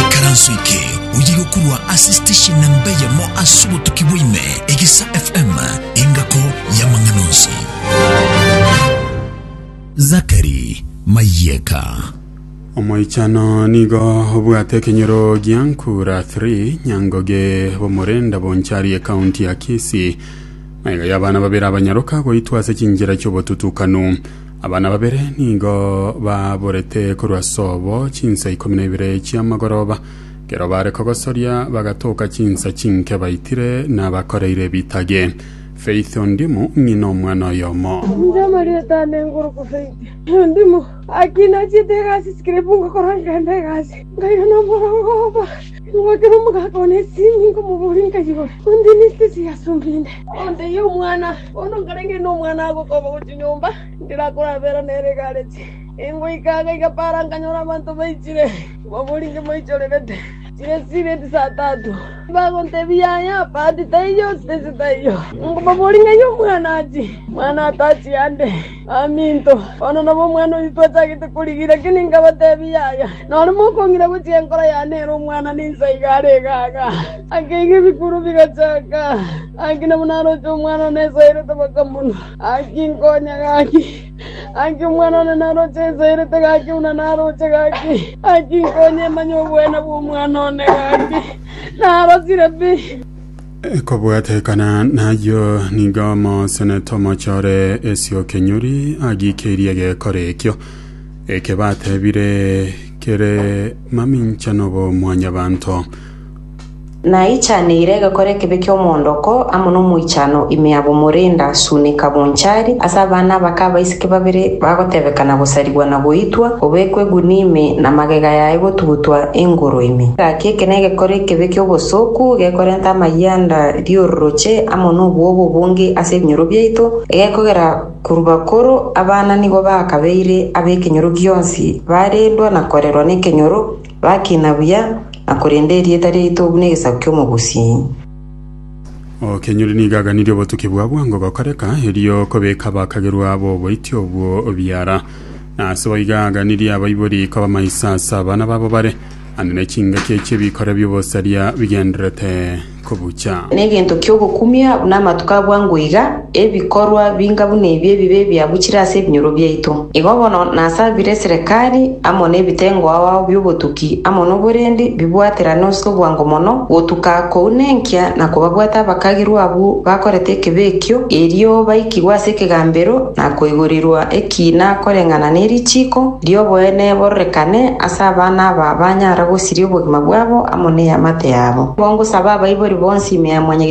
Ikaranso eke oye gokorwa ase station namba eyemo ase obotuki bwa ime, Egesa FM, engako y'amang'ana onsi. Zakari Mayeka. Omoichano nigo obwate ekenyoro gia Nkura 3 Nyangoge Bomorenda Bonchari ekaunti ya Kisii. Maiga y'abana babere abanyaroka goitwa ase chinchera chiobotutukanu. Abana babere nigo baaborete korwa ase obo chinsa ikomi na ibere chi'amagoroba. Ekero baare kogosoria bagatoka chinsa chinke baitire nabakoreire ebitage. Faith Ondimu ng'ina omwana oyomo. Inche amarieta ane ngoroku Faith Ondimu. Aki nachiete egasi sikira epungo korwa nkenda egasi nkairana omorongo oba. Ngoteba omogaka one ase ime, nkomobooria, Nkayora, onde nesike eseye ase onde inde? Ontebia, Omwana one nkarenge inde omwana agokoba gochia nyomba, ndire akore abera nere egareti. Ingoika aa gaiga para nkanyora abanto baichire, mbabori inche moichorerete, chire sibeti saa tatu. Bagontebia, Yaya, bahati taiyo, space taiyo. Nkobabooria, Ng'ai omwana achie? Omwana atachia ande. “Baminto, bono nabo omwana oito twachagete korigia, lakini nkabateebia, Yaya, nore mokong'ina gochia enkoro yane ere omwana ninsa iga are iga aaga. Akeiga ebikuro bigachaka, gaki nabo naroche omwana one esaerete bakamonwa. Gaki nkonya gaki, gaki omwana one naroche esaerete gaki buna naroche gaki, gaki nkonya emanye oboene bw'omwana one gaki narosire pi.” Ekobwatekana nayio nigo omosenete omochore esio kenyori agikeirie egekora ekio, eke batebire kere maminchano bo mwanyabanto. Naichaneire egekora ekebe ki'omoondoko amo nomoichano ime abwo morenda suneka bonchari ase abana abake abaiseke Abaiseke babere bagotebeka na gosarigwa na goitwa, obekwe egunia ime, na magega yaye gotugutwa engoro ime. Gaki eke negekore ekebe ki'obosooku, gekorenta amayianda ri'ororoche amo nobwoba obonge ase ebinyoro biaito, egekogera korwa bakoro abana nigo bakabeire ab'ekenyoro gionsi, barendwa na korerwa nekenyoro, bakina buya, na korenda erieta riaito buna egesaku ki'omogusi. Okenyori nigo aganirie obotuki bwa bwango gokoreka, erio kobeka abakagerwa b'oboiti obwo biara. Na ase boigo aganirie abaibori koba maiso ase abana babo bare, ande ne chingaki echio bikore bi'obosaria bigendererete kobucha. Negento kiogokumia buna amatuko abwango iga. Ebikorwa binga buna ebi ebibe ebiabuchire ase ebinyoro biaito, igo bono nasabire eserekari amo nebitengo ao bi'obotuki amo noborendi bibwaterane ase obwango mono, gotuka kounenkia na kobabwata abakagirwa abwo bakorete ekebe ekio, erio baikigwe ase ekegambero na koigorirwa ekiina koreng'ana ne richiiko ri'oboene bororekane ase abana aba banyara gosiria obogima bwabo amo ne eamate yabo. Nigo ngosaba abaibori bonsi ime ya mwanyagitar'oino.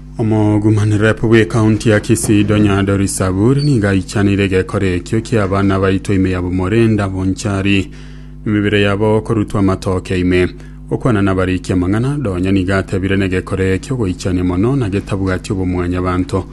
Omogumanerepu bw'ekaunti ya Kisii Donya Doris Saburi nigo aichanire egekora ekio kia abana baitwa ime ya Bomorenda Bonchari, emebere yabo okorutwa amatoke ime. Gokwana nabarikia amang'ana, Donya nigo atebire negekora ekio goichania mono na getabwati obomwanyabanto.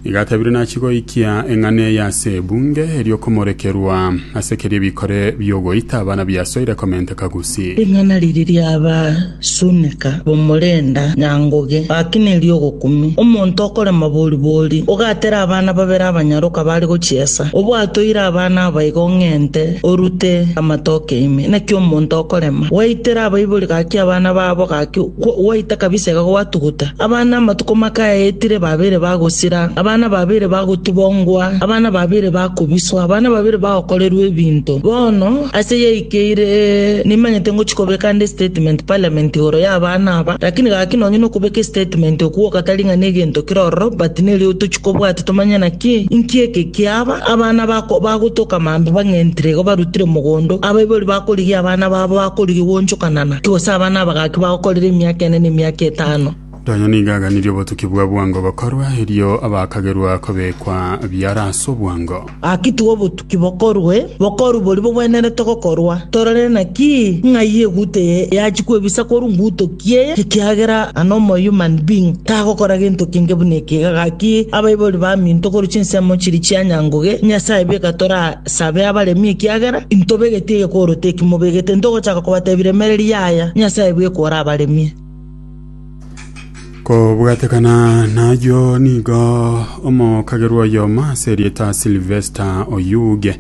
Nigo atebire nachi goikia eng'ana eye ase ebunge erio komorekerwa ase keria ebikore biogoita abana biasoire komenteka Gusii. Ring'ana riria riaba Sunika bomorenda nyangoge, gaki nerio ogokumia. Omonto okorema boribori, ogatere abana babere abanyaroka bare gochiesa, obwatoire abana aba igo ng'ente orute amatoke ime. Naki omonto okorema, gwaitera abaibori gaki abana babo, gaki gwaita kabisa iga gwatuguta. Abana amatuko make ayaetire babere bagosira, abana babere bagotubongwa, abana babere bakobiswa, abana babere bagokorerwa ebinto. Bono ase yaikire. Keire nimanyete ngochia kobeka nde estatement parliament igoro y'abana aba, lakini gaki nonye nokobeka estatement okwo gatari ng'a negento kere ororo, but nerio otochia kobwati tomanye naki inki eke kiaba, abana bako bagotoka mambia bang'entire iga barutire mogondo, abaibori bakorigia abana babo bakorigia gwonchokanana, ki gose abana aba gaki bagokorire emiaka ene na emiaka etano. Onye nigo aganirie obotuki bwa bwango gokorwa, erio abakagerwa kobekwa biara ase obwango. Gaki tiga obotuki bokorwe, bokorwe boria bogwenerete gokorwa. Torore naki ng'ai eguta eye yachia kwebisa korwa ngutoki eye, ekiagera an omo human being tagokora gento kenge buna eke iga. Gaki abaibori baminto korwa chinsemo chiria chia nyangoge, Nyasae beka torasabe abaremi ekiagera intobegeti egekoro teki mobegete, ntogochaka kobatebia remereria yaya, Nyasae beka orabaremie. kobwatekana nayio nigo omokagerwa oyomo ase erieta silvester oyuge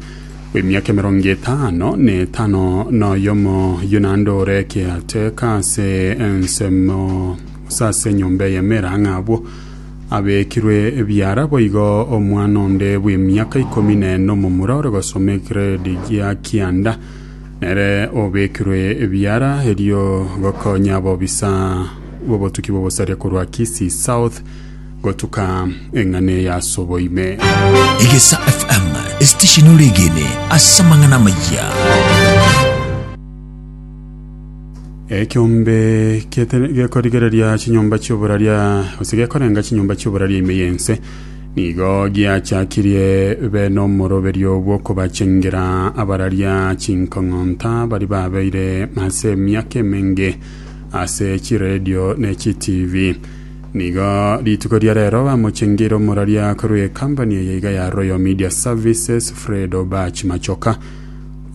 w'emiaka emerongo etano na etano na oyomo yunande ore ekiateka ase ensemo gose ase enyomba eyemera ng'a abwo abekirwe ebiara boigo omwana onde bw'emiaka ikomi na ene omomura ore gosoma egrade gia kianda Nere obekirwe ebiara erio gokonya abobisa b'obotuki bw'obosaria korwa Kisii South gotuka eng'ana eye ase oboime. Egesa FM, esitesheni ore egene ase amang'ana amayia. Ekiombe kiete- gekorigereria chinyomba chi'oboraria gose gekorenga chinyomba chi'oboraria ime y'ense Nigo giachakirie be nomoroberio bw'okobachengera abararia chinkong'onta baria babeire ase emiaka emenge ase chiredio ne chitivi. Nigo rituko ria rero bamochengeire omoraria korwa ekambani eye iga ya Royal Media Services Fred Obach Machoka,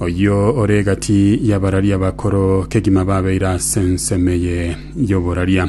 oyio ore egati y'abararia bakoro kegima babeire ase ensemo eye y'oboraria.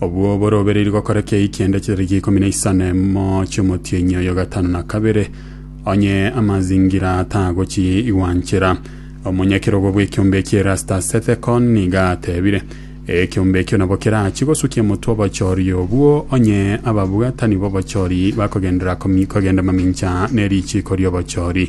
Obwo borobereiri gokora kei kende chitariki ikomi na isano na emo chi'omotienyi oyo gatano na kabere, onye amazingira tagochi igwanchera. Omonyakerogo bw'ekiombe ekie Erastus Ethekon nigo atebire, Ekiombe ekio nabo kerachie gosukia motwe obochoria obwo, onye ababwatani b'obochoria bakogenderera kogenda mamincha ne richiiko ri'obochoria.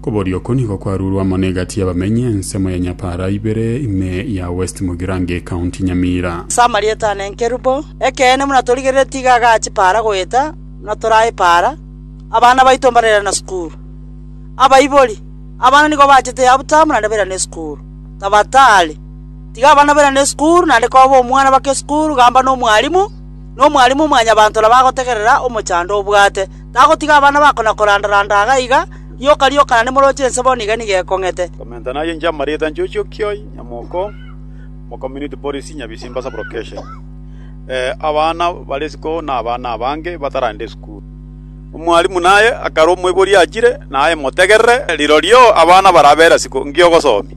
Koboria oko nigo kwarurwe amo negati y'abamenyi ensemo ya Nyapara ibere ime ya West Mugirange County Nyamira. Ase amarieta ane nkerubo, ekeene buna torigerere tiga agachi para goeta buna torae para, abana baito mbarerana sukuru. Abaibori, abana nigo bachete yabutamu naende bairane sukuru. Tabatari, tiga abana bairane sukuru naende koba omwana bake sukuru gamba nomwarimu, nomwarimu mwanyabanto nabo agotegerera omochando obwate. Tagotiga abana bako na koranda‐randa iga na iga, rioka rioka naende moroche ense bono iga nigo ekong'ete. Komenta naye inche amarita inche Ochiokioi, nyamoko mo Community Policy Nyabisimba Sub Location. Abana bare isiko na abana abange bataragenda esukuru. Omwalimu naye akarwa omoibori achire, naye motegerere, rirorio abana barabera isiko, inki ogosomia?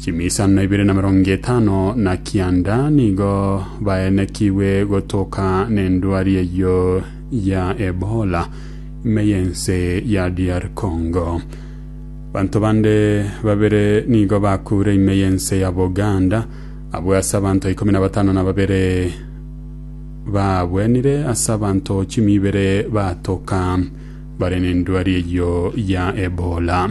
Chimiisano na ibere na emerongo etano na kianda nigo baenekigwe gotoka nendwari eyio ya Ebola ime y'ense ya DR Congo. Banto bande babere nigo bakure ime y'ense ya Buganda abwo ase abanto ikomi na batano na babere babwenire ase abanto chimi ibere batoka bare nendwari eyio ya Ebola.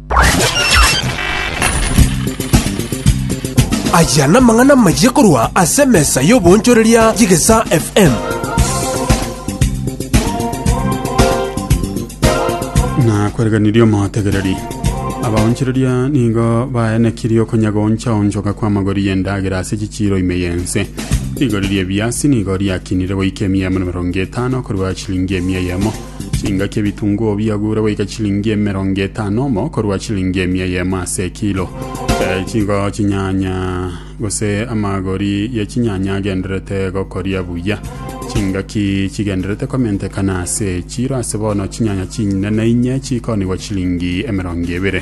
Aya namang'ana amayia korwa ase emesa y'oboonchoreria y'Egesaa FM. nakwereganirie omotegereri abaonchereria nigo baenekirie okonyagonchaonchoka kw'amagori y'endagera ase chichiiro ime y'ense rigori ri'ebiasi nigo riakinire goika emiya amo na emerongo etano korwa chilingi emiya yemo Chingaki ebitunguo biagure goika chilingi emerongo etano omo korwa chilingi emia eyemo ase ekilo. Eh, chingo chinyanya gose amagori ya chinyanya agenderete gokoria buya chingaki chigenderete komentekana ase echiro ase bono chinyanya chinene inye chikonigwa chilingi emerongo ebere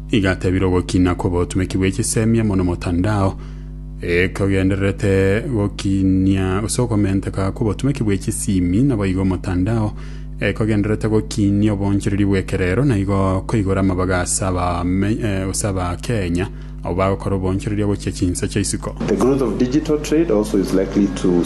Igatebire ogokina kw'obotumeki bwe chisemia mono motandao, ekogendererete gokinia gose okomenteka kw'obotumeki bwe chisimi, naboigo motandao ekogendererete gokinia obonchereri bw'ekerero, naigo koigora amabaga ase abame, eh, gose abakenya abwo bagokora obonchereri ogochia chinsa chia isiko. The growth of digital trade also is likely to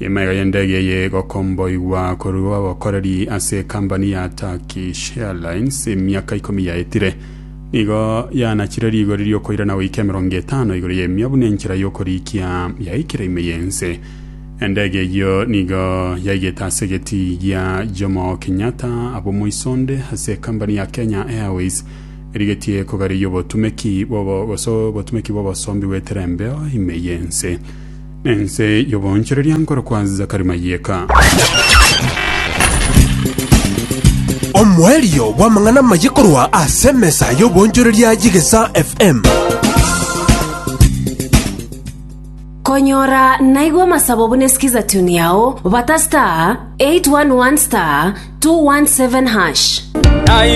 Emaiga y'endege eye egokomboigwa korwa abakoreri ase ekambani ya Turkish Airlines emiaka ikomi yaetire. Nigo yanachire rigori riokoirana goika emerongo etano igoro y'emia buna enchera y'okorikia yaikire ime y'ense. Endege eyio nigo yaigete ase egetii gia Jomo Kenyatta abomoisonde ase ekambani ya Kenya Airways erigetie kogarigia obotumeki bw'obo- gose obotumeki bw'obosombi bw'eterembeo ime y'ense. Ense y'oboonchoreria nkorokwa Zakari Mayeka. Omoerio bw'amang'ana amaye korwa ase emesa y'oboonchoreria y'Egesa FM. Konyora naigwa amasabo buna esikiza tune yao bata star 811 star 217 hash.